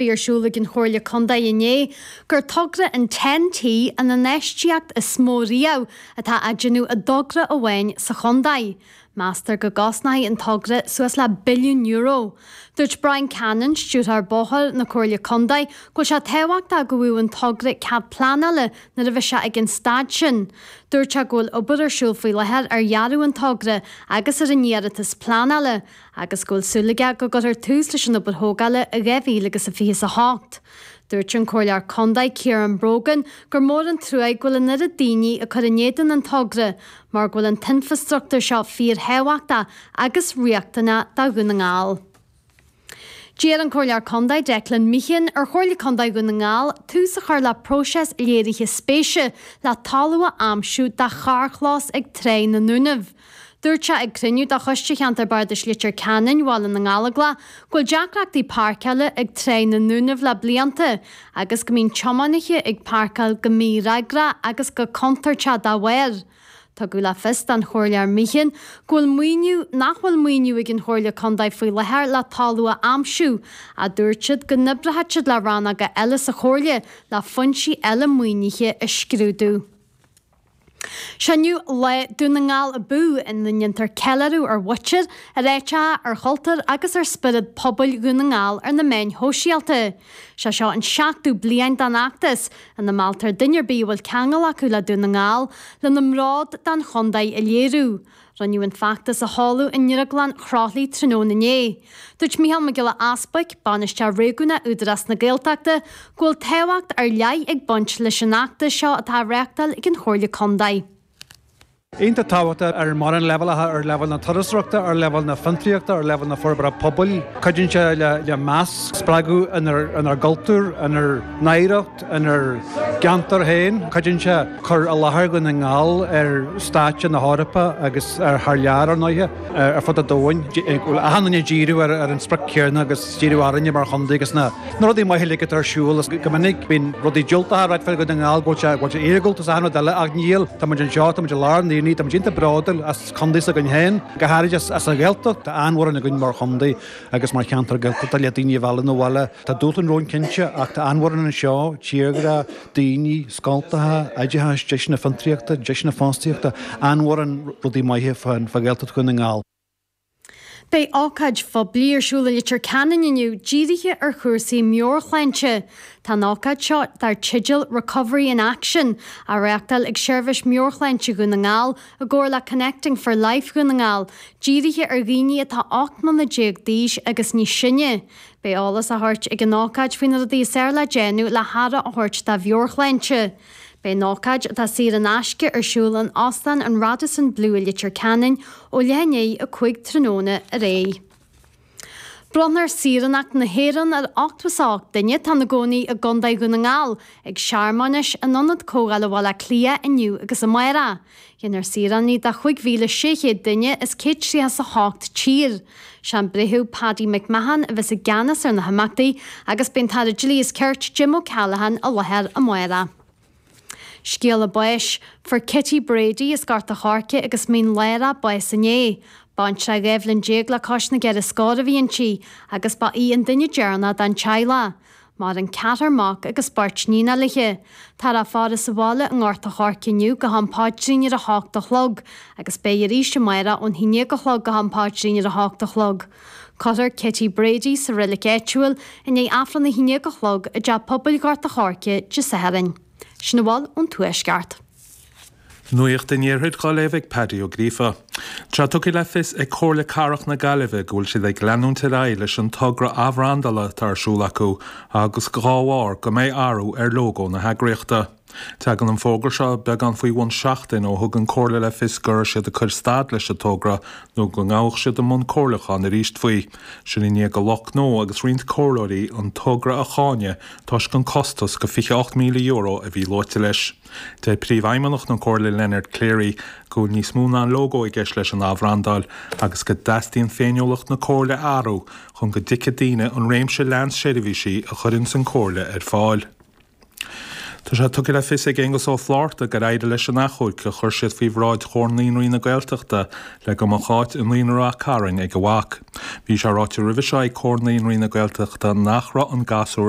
Dúradh ag an Chomhairle Contae inné gur togra an Ten-T an infheistíocht is mó riamh atá á déanamh i dtogra amháin sa chontae. Meastar go gcosnóidh an togra suas le billiún euro. Dúirt Brian Cannon, Stiúrthóir Bóithre na Comhairle Contae, go bhfuil sé tábhachtach go bhfaigheadh an togra cead pleanála nuair a bheas sé ag an staid sin. Dúirt sé go bhfuil obair ar siúl faoi láthair ar dhearadh an togra agus ar an iarratas pleanála, agus go bhfuil súil aige go gcuirfear tús leis an obair thógála in 2000 agus a fiche 's a hocht. Dúirt an Comhairleoir Condae Ciaran Brogan gur mór an truaigh go bhfuil an oiread daoine ag cur in éadan an togra mar go bhfuil an t-infrastruchtúr seo fíorthábhachtach agus riachtanach do Dhún na nGall. D'iarr an Comhairleoir Condae Declan Meehan ar Chomhairle Condae Dhún na nGall tús a chur le próiseas léirithe spéise le talamh a aimsiú do charrchlós ag Tráigh na nDúnaibh. Dúirt sé ag cruinniú de Choiste Cheantar Bardais Leitir Ceanainn Bhaile na nGallóglach go bhfuil deacrachtaí páirceála ag Tráigh na nDúnaibh le blianta agus go mbíonn tiománaithe ag páirceáil go mífhreagrach agus go contúirteach dá bharr. Tugadh le fios don Chomhairleoir Meehan go bhfuil maoiniú nach bhfuil maoiniú ag an Chomhairle Contae faoi láthair le talamh a aimsiú ach dúirt siad go n-oibreoidh siad le rannóga eile sa Chomhairle le foinsí eile maoinithe a scrúdú. Sé inniu Lá Dún na nGall Abú ina ndéantar ceiliúradh ar mhuintir, ar áiteacha, ar chultúr agus ar spiorad pobail Dhún na nGall ar na meáin shóisialta. Sé seo an seachtú bliain den fheachtas, ina mealltar duine ar bith a bhfuil ceangal acu le Dún na nGall, lena mbród don chontae a léiriú. Rinneadh an feachtas a sheoladh i nDrioglann Chroithli tráthnóna inné. Dúirt Micheál Mac Giolla Easbuic, Bainisteoir Réigiúnach Údarás na Gaeltachta, go bhfuil tábhacht ar leith ag baint leis an fheachtas seo atá á reáchtáil ag an Chomhairle Contae. Iontach tábhachtach ar mórán leibhéalacha, ar leibhéal na turasóireachta, ar leibhéal na fiontraíochta, ar leibhéal na forbartha pobail. Cuidíonn sé le meas a spreagadh inár gcultúr, inár n-oidhreacht. Inár gceantar féin, cuidíonn sé cur i láthair Dhún na nGall ar stáitse na hEorpa agus thar lear, ar ndóighe, ar fud an domhain. Daoine ag díriú ar an sprioc chéanna agus díriú orainne mar chontae agus na rudaí maithe uilig atá ar siúl. Go minic bíonn rudaí diúltacha á rá fá Dhún na nGall, go bhfuil sé, go bhfuil sé iargúlta is achan rud eile ach níl. Tá muid anseo, tá muid i lár an aonaigh, tá muid iontach bródúil as contae s'againn féin, go háirid as an Ghaeltacht, tá an-mhórán againn mar chontae agus mar cheantar Gaeltachta le daoine a mhealladh 'na bhaile. Tá dúshláin romhainn cinnte, ach tá an-mhórán anseo, tírdhreach, daoine, scoltacha, oideachas, deiseanna fiontraíochta, deiseanna fostaíochta, an-mhórán rudaí maithe fá Ghaeltacht Dhún na nGall. Beidh ócáid phoiblí ar siúl i Leitir Ceanainn inniu dírithe ar chúrsaí meabhairshláinte. Tá an ócáid seo, dar teideal 'Recovery in Action', á reáchtáil ag Seirbhís Meabhairshláinte Dhún na nGall i gcomhar le Connecting for Life Dhún na nGall, dírithe ar dhaoine atá 18 mbliana d'aois agus níos sine. Beidh eolas á thabhairt ag an ócáid faoi na rudaí is fhearr le déanamh le haire a thabhairt dá mheabhairshláinte. Beidh an ócáid, atá saor in aisce, ar siúl in Óstán an Radisson Blu i Leitir Ceanainn ó leath i ndiaidh a 5 tráthnóna ar aghaidh. Bronnfar Saoránacht na hÉireann ar 88 duine atá ina gcónaí i gContae Dhún na nGall ag searmanais in Ionad Comhdhála Bhaile Átha Cliath inniu agus amárach. Déanfar saoránaigh de chúig mhíle sé chéad duine as céad tríocha 's a hocht tír. Sé an Breitheamh Paddy McMahon a bheas i gceannas ar na himeachtaí agus beidh an tAire Dlí is Cirt, Jim O'Callaghan i láthair amárach. Scéala báis. Fuair Kitty Brady as Gort a' Choirce agus Mín Lárach bás inné. Baintreach dhá bhliain déag le cois na gceithre scór a bhí inti agus ba í an duine deireanach den teaghlach. Maireann ceathrar mac agus beirt iníonacha léithi. Táthar á faire sa bhaile i nGort a Choirce inniu go ham páidrín ar a h-ocht a chlog agus beidh arís amárach ón haon déag a chlog go ham páidrín ar a h-ocht a chlog. Cuirfear Kitty Brady sa reilig áitiúil i ndiaidh Aifreann a haon déag a chlog i dTeach Pobail Ghort a Choirce Dé Sathairn. Sin a bhfuil ón Tuaisceart. Nuacht an Iarthair dhá léamh ag Paddy Ó Gríofa. Tá tugtha le fios ag Comhairle Cathrach na Gaillimhe go bhfuil siad ag leanúint ar aghaidh leis an togra athbhrandála atá ar siúl acu agus go dhá bharr go mbeidh athrú ar lógó na heagraíochta. Tagann an fógra seo beagán faoi bhun seachtain ó thug an Chomhairle le fios go raibh siad ag cur stad leis an togra nó go ngabhadh siad i mbun comhairliúcháin arís faoi. Sin i ndiaidh do lucht gnó agus roinnt comhairleoirí an togra a cháineadh toisc an costas de €28,000 a bhí luaite leis. Deir Príomhfheidhmeannach na Comhairle Leonard Cleary go bhfuil níos mó ná lógó i gceist leis an athbhrandáil agus go dteastaíonn féiniúlacht na Comhairle a athrú chun go dtuigfidh daoine an réimse leathan seirbhísí a chuireanns an Chomhairle ar fáil. Tá sé tugtha le fios ag Aengus Ó Flátharta gur éirigh leis an achomharc a chuir siad faoi bhráid Chomhar Naíonraí na Gaeltachta le go mbeadh áit i Naíonra Ráth Chairn ag a mhac. Bhí sé ráite roimhe seo ag Comhar Naíonraí na Gaeltachta nach raibh an gasúr